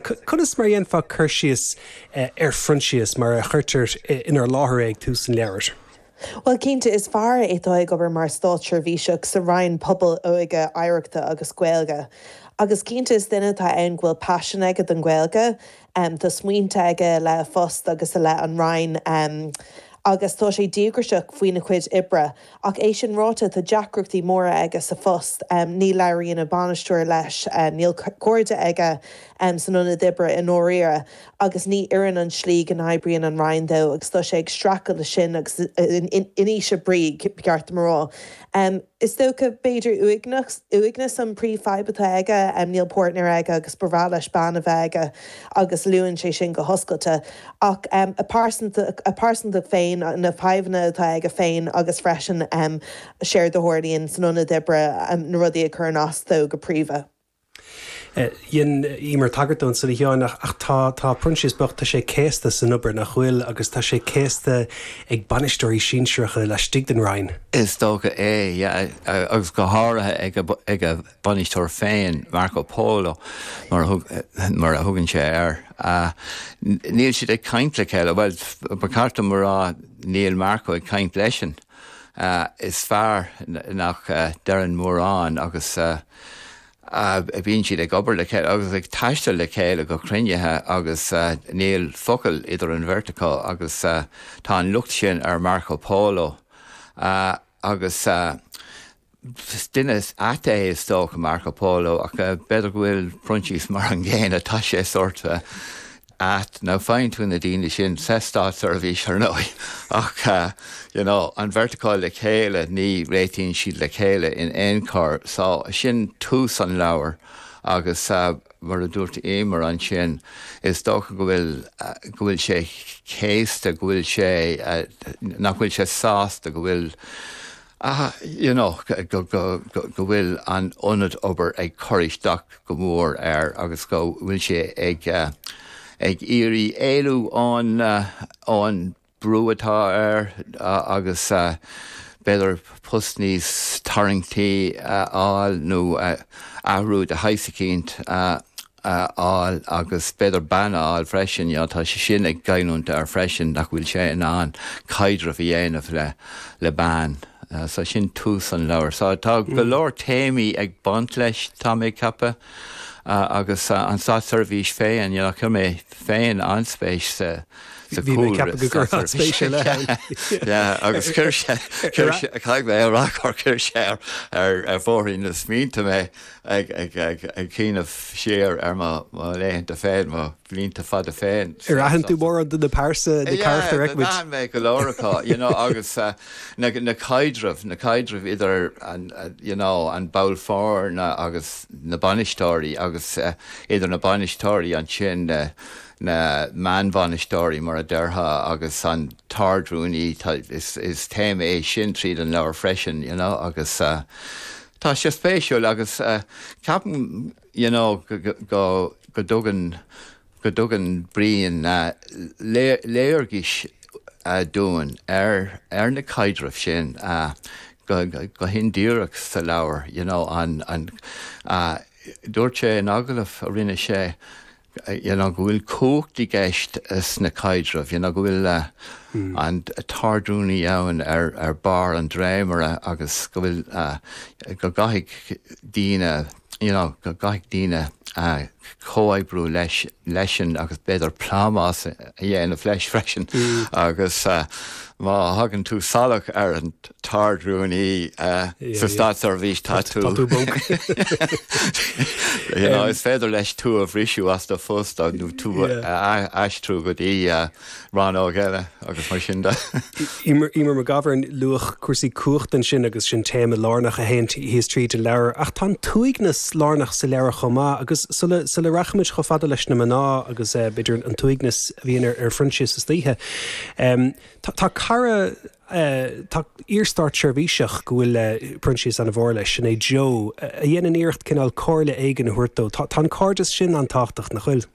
Conas mar a dhéanfá cur síos ar Phroinsias mar a chuirtear inár láthair é ag tús an leabhair? Bhuel, cinnte, is fear é atá ag obair mar státseirbhíseach sa Roinn Pobail, Óige, Oidhreachta agus Gaeilge. Agus cinnte, is duine atá ann go bhfuil paisean aige don Ghaeilge. Tá smaointe aige i leith a phoist agus i leith an Roinn agus tá sé díograiseach faoina chuid oibre. Ach é sin ráite, tá deacrachtaí móra aige sa phost. Ní labhraíonn a bhainisteoir leis, níl cairde aige san ionad oibre i ndáiríre, agus ní oireann an tslí go n-oibríonn an Roinn dó agus tá sé ag streachailt leis sin agus in ísle brí, ba cheart dom a rá. Is dócha, b'fhéidir, uaigneas an phríomhfhadhb atá aige. Níl páirtnéir aige agus ba bhreá leis bean a bheith aige. agus luann sé sin go hoscailte, ach a phearsantacht féin, na fadhbanna atá aige féin agus freisin séard a tharlaíonn san ionad oibre, na rudaí a chuireann as dó go príomha. Dhein Eimear tagairt dó ansin, a Sheáin, ach tá tá Proinsias bocht, tá sé céasta san obair, nach bhfuil? Agus tá sé céasta ag bainisteoirí sinsearacha laistigh den Roinn. Is dócha é, yeah, agus go háirithe ag a, ag a. bainisteoir féin, Marco Polo, mar a thugann sé air. Níl siad ag caint le chéile, bhuel, ba cheart dom a rá, níl Marco ag caint leisean. Is fear é nach ndeireann mórán agus bíonn siad ag obair le chéile agus ag taisteal le chéile go cruinnithe agus níl focal idir an bheirt acu agus tá an locht sin ar Marco Polo agus Is duine ait é, is dócha, Marco Polo, ach b'fhéidir go bhfuil Proinsias mar an gcéanna. Tá sé sórt ait. Now faigheann tú na daoine sin sa státseirbhís, ar ndóigh, ach you know an bheirt acu le chéile, ní réitíonn siad le chéile in aon chor. So sin tús an leabhair agus mar a dúirt Eimear ansin, is dócha go bhfuil, go bhfuil sé céasta, go bhfuil sé, nach bhfuil sé sásta go bhfuil, ach you know go bhfuil an ionad obair ag cur isteach go mór air agus go bhfuil sé ag ag iarraidh éalú ón ón brú atá air agus b'fhéidir post níos tarraingtí a fháil nó athrú de shaghas eicínt a fháil agus b'fhéidir bean a fháil freisin, you know, tá sé sin ag goilliúint air freisin nach bhfuil sé in ann caidreamh a dhéanamh le, le bean. So sin tús an leabhair. So tá go leor téamaí ag baint leis, tá mé ag ceapadh, agus an Státseirbhís féin, you know, chuir mé féin an-spéis sa, sa Bhí mé ag ceapadh go gcuirfeá spéis ar leith. Yeah, agus chuir sé, chuir sé, caithfidh mé a rá gur chuir sé ar, ar, ar bhóithrín na smaointe mé. ag cuimhneamh siar ar mo laethanta féin, mo bhlianta fada féin. Ar aithin tú mórán de na pearsana, na carachtair a fheicimid? Yeah, d'aithin mé go leor acu, you know, agus na caidrimh, na caidrimh idir an, you know, an ball foirne agus na bainisteoirí agus idir na bainisteoirí ansin, na meánbhainisteoirí mar a déarfá agus an tArd-Rúnaí, is téama é sin tríd an leabhar freisin, you know, agus. Tá sé spéisiúil agus ceapaim y'know go dtugann Brian léargas dúinn ar na caidrimh sin go hindíreach sa leabhar y'know. Dúirt sé in agallamh a rinne sé you know go bhfuil cumhacht i gceist sna caidrimh, you know go bhfuil an t-ardrúnaí ann ar bharr an dréimire agus go bhfuil, go gcaithfidh daoine, you know go gcaithfidh daoine comhoibriú leisean agus b'fhéidir plámás a dhéanamh leis freisin agus má thagann tú salach ar an, tArd-Rúnaí sa státseirbhís, tá tú. Tá tú bog. Is féidir leis tú a bhriseadh as do phost nó tú a aistriú go dtí rannóg eile agus mar sin de. Emer McGovern, luadh cúrsaí cumhachta ansin agus sin téama lárnach a théann síos tríd an leabhar. Ach tá an t-uaigneas lárnach sa leabhar chomh maith agus sula rachaimid chomh fada leis na mná agus b'fhéidir an t-uaigneas a bhíonn ar Phroinsias istoíche, tá cara tá iar-státseirbhíseach go bhfuil Proinsias an-mhór leis, sin é Joe, a dhéanann iarracht cineál comhairle éigin a thabhairt dó. Tá an cairdeas sin an-tábhachtach, nach bhfuil?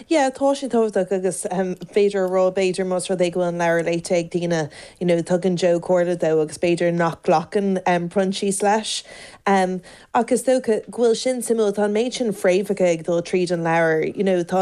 Yeah, tá sé tábhachtach agus b'fhéidir a rá, b'fhéidir, más rud é go bhfuil an leabhar léite ag daoine, you know, tugann Joe comhairle dó agus b'fhéidir nach nglacann Proinsias leis. Ach is dócha go bhfuil sin suimiúil, tá an méid sin fréamhacha ag dul tríd an leabhar, you know, tá.